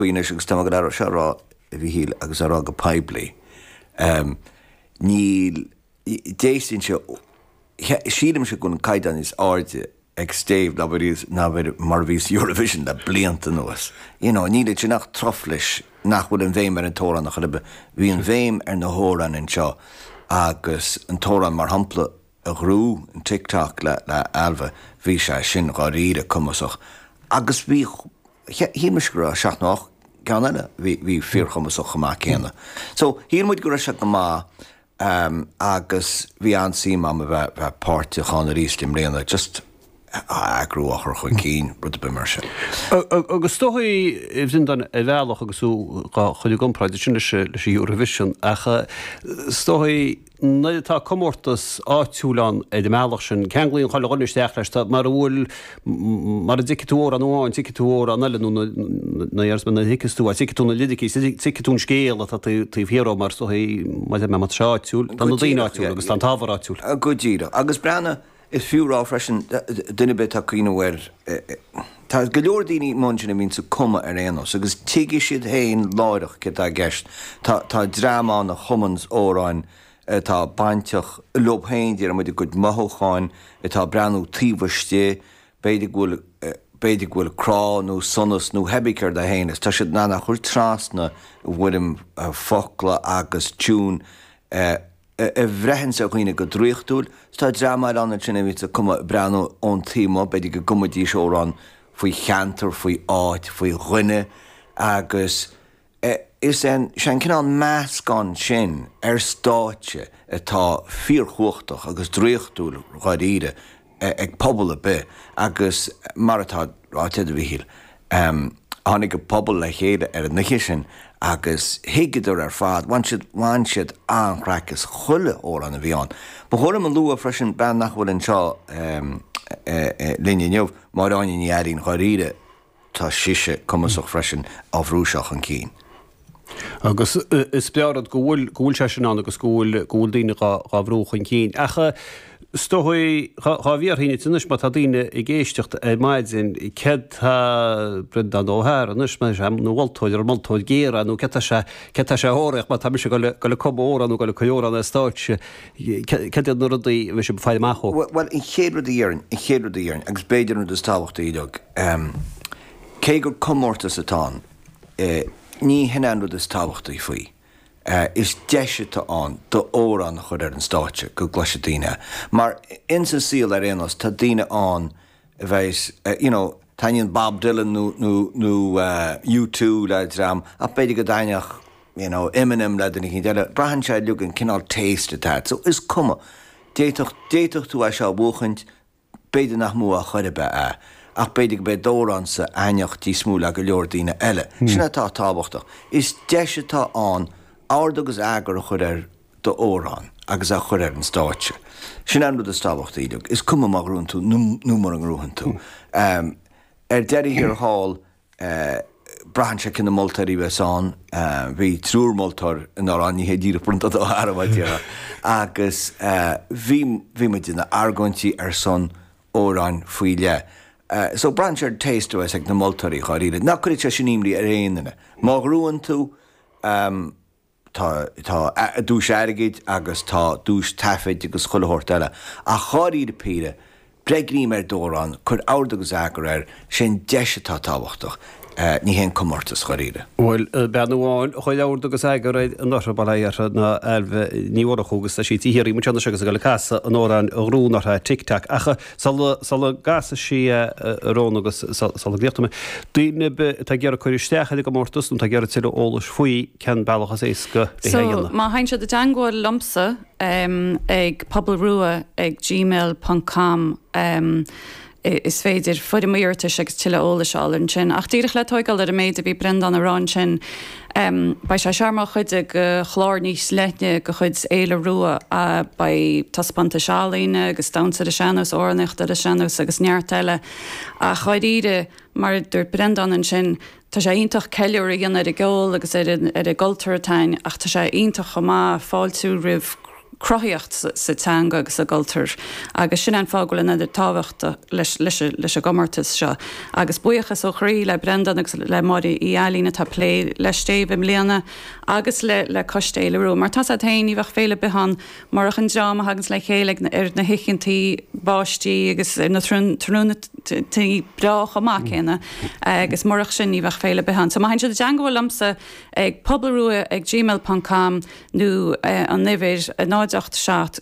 faoi anois agus táim ag an earra seo a rá, a Mhíchíl, agus á rá go poiblí, níl, d'fheicfinnse, sílimse go bhfuil an caighdeán níos airde ag Stave ná mar a bhí mar a bhí sa Eurovision le blianta anuas. You know, níl ansin ach truflais nach bhfuil an bhéim ar an t-amhrán ach ar bith. Bhí an bhéim ar na hamhráin anseo agus an t-amhrán mar shampla a ghnóthaigh, an Tick Tock le Ailbhe, bhí sé sin dháiríre cumasach agus bhí, shíl mise go raibh, seacht nó ocht gceann eile bhí fíorchumasach chomh maith céanna. So, shíl muid go raibh sé go maith agus bhí an-suim a'm a bheith páirteach ann aríst i mbliana, just a eagrú, a chur chun cinn, rud ar bith mar sin. Agus is dócha a Bhreandáin ar bhealach agus tú dhá chur i gcomparáid ansin leis an Eurovision ach is dócha, nuair atá comórtas áitiúil ann ar an mbealach sin, ceanglaíonn chuile dhuine isteach leis, tá, mara bhfuil, mara dtuigfidh tú amhrán amháin, tuigfidh tú amhrán eile, nó na, na iarsmaí, a thuigfeas tú, tuigfidh tú na liricí, is tuigfidh tú an scéal atá taobh, taobh thiar ó, mar is dócha, maidir le, mar tá sé áitiúil, tá na daoine áitiúil agus tá an t-ábhar áitiúil. Go díreach. Agus breathnaigh. Is fiú a rá freisin, duine ar bith atá ag cuimhneamh air, tá go leor daoine amuigh ansin a bhíonns ag cumadh ar aon nós, agus tuigfidh siad féin láithreach céard atá i gceist. Tá dream ann a chumanns amhráin atá bainteach leob féin, déarfaimid, a gcuid mothúcháin atá ag breathnú taobh istigh, b'fhéidir go bhfuil, b'fhéidir go bhfuil crá nó sonas nó hé bí céard é féin, agus tá siad in ann é a chur trasna i bhfoirm focla agus tiúin. a bhraitheanns daoine go draíochtúil, 's tá dream eile ann ansin a bhíonns ag cumadh, ag breathnú ón taobh amuigh, b'fhéidir go gcumfaidís amhrán faoi cheantar, faoi áit, faoi dhuine agus is é an, is é an cineál meascán sin ar stáitse atá fíorchumhachtach agus draíochtúil dháiríre ag pobal ar bith agus mar atá ráite ag Micheál, tháinig an pobal le chéile ar an oíche sin agus thuigeadar ar fad, bhain siad, bhain siad an-chraic as chuile amhrán a bhí ann. Ba chóir dom a lua freisin bean nach bhfuil anseo linn inniu, Máire Áine Ní Iarnáin, dháiríre, Tá sise cumasach freisin, á bhrú seo chun cinn. Agus is breá rud go bhfuil, go bhfuil sé sin ann agus go bhfuil, go bhfuil daoine dhá, dhá bhrú chun cinn. Ach is dócha, dhá, dá mbeifeá ag smaoineamh anois, má tá daoine ag éisteacht ar maidin, céard atá Breandán Ó hEaghra anois, má tá sé ina mholtóir, an moltóir géar, nó céard tá sé, céard tá sé a thabharfaidh, má tá mise ag dul, ag dul ag cumadh amhráin nó ag dul ag cur amhráin ar stáitse, Céard iad na rudaí a bheas sibh ag faire amach dó? Bhuel, an chéad rud a dhéarfainn, an chéad rud a dhéarfainn, agus b'fhéidir an rud is tábhachtaí uilig, cé gur comórtas atá ann, ní shin é an rud is tábhachtaí faoi, is deis atá ann d'amhrán a chur ar an stáitse, go gcloisfidh daoine é. Mar, insa saol ar aon nós, tá daoine ann a bheith, you know, taitníonn Bob Dylan nó, nó, nó U2 le dream ach b'fhéidir go dtaitneodh, you know, Eminem le duine éicínt eile. Braitheann sé uilig an cineál taste atá a't. So, is cuma. D'fhéadfadh, d'fhéadfadh tú é seo a bhuachaint, b'fhéidir nach mbuafá ar chor ar bith é ach b'fhéidir gurb é d'amhránsa a thaitneodh níos mó le go leor daoine eile. Sin atá tábhachtach. Is deis atá ann ord agus eagar a chur ar, d'amhrán agus é a chur ar an stáitse. Sin an rud is tábhachtaí liom, is cuma má ghnóthaíonn tú nó mura ngnóthaíonn tú. Ar deireadh thiar thall, braitheann sé cé na moltóirí a bheas ann, bhí triúr moltóir in Ár Ainmhithe díreach bronnta dó thar a bheith déanach agus bhí bhí muid ag déanamh argóintí ar son amhráin faoi leith. So braitheann sé ar an taste a bheas ag na moltóirí dháiríre. Ná cuireadh sé sin imní ar aon duine. Má ghnóthaíonn tú, tá, tá duais airgid agus tá duais taifid agus chuile shórt eile. Ach dháiríre píre, breith greim ar d'amhrán, cuir ord agus eagar air, sé an deis atá tábhachtach, ní hé an comórtas, dháiríre. Bhuel, bean amháin a chuir ord agus eagar air anuraidh, bail ó Dhia uirthi, ná Ailbhe Ní Mhurchú agus tá sí ag iarraidh muid anois agus ag goil ag casadh an amhráin a ghnóthaigh anuraidh, Tic Tac. Ach sula gcasfaidh sí, a Rhóna, agus sula gcríochnóidh mé, daoine atá ag iarraidh cur isteach ar an gcomórtas nó atá ag iarraidh tuilleadh eolais faoi, cén bealach is éasca é a dhéanamh? Má thagann siad i dteangmháil liomsa ag pobalrua ag gmail ponc com is féidir foirm iarratais agus tuilleadh eolais a fháil ansin. Ach díreach le tóigeáil ar an méid a bhí Breandán ag rá ansin, beidh sé seo mar chuid de chlár níos leithne de chuid Fhéile Rua, beidh taispeántais ealaíne agus damhsa ar an sean-nós, amhránaíocht ar an sean-nós agus neart eile. Ach dháiríre, mar a dúirt Breandán ansin, Tá sé iontach ceiliúradh a dhéanamh ar an gceol agus ar an gcultúr atá a'inn ach tá sé iontach chomh maith fáiltiú roimh cruthaíocht sa teanga agus sa gcultúr agus sin é an fáth go bhfuil an oiread tábhachta leis an gcomórtas seo agus buíochas ó chroí le Breandán agus le Máire Uí Ailín atá ag plé le Stéibh i mbliana agus le coiste Fhéile Rua. Mar atá a fhios a't féin, ní bheadh féile ar bith ann Murach an dream a thaganns le chéile ar na hoícheantaí báistí agus ar na tráthnóntaí breá chomh maith céanna, agus murach sin, ní bheadh féile ar bith ann. So má théann siad i dteangabháil liomsa ag pobalrua ag gmail ponc com nó an uimhir, 0 8 7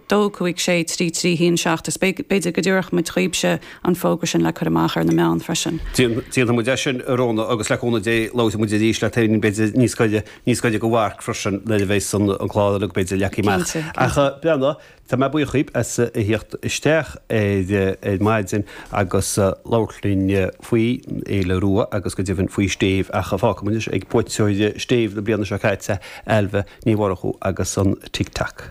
2 5 6 3 3 1 7, is b'fhéidir go dtabharfadh muid dhaoibhse an fógra sin le cur amach ar na meáin freisin. Déanfaidh muid é sin, a Rhóna, agus le cúnamh Dé labhróidh muid arís leat féin b'fhéidir níos gaire. Níos gaire don mharc freisin nuair a bheas an clár uilig, b'fhéidir, leagtha amach. Cinnte, cinnte. Ach b'in é. Tá mé buíoch dhaoibh as a thíocht isteach ar maidin agus labhairt linn faoi Fhéile Rua agus go deimhin faoi Stéibh, ach fágfaimid anois ag buaiteoir Stéibh na bliana seo caite, Ailbhe Ní Mhurchú agus an Tic Tac.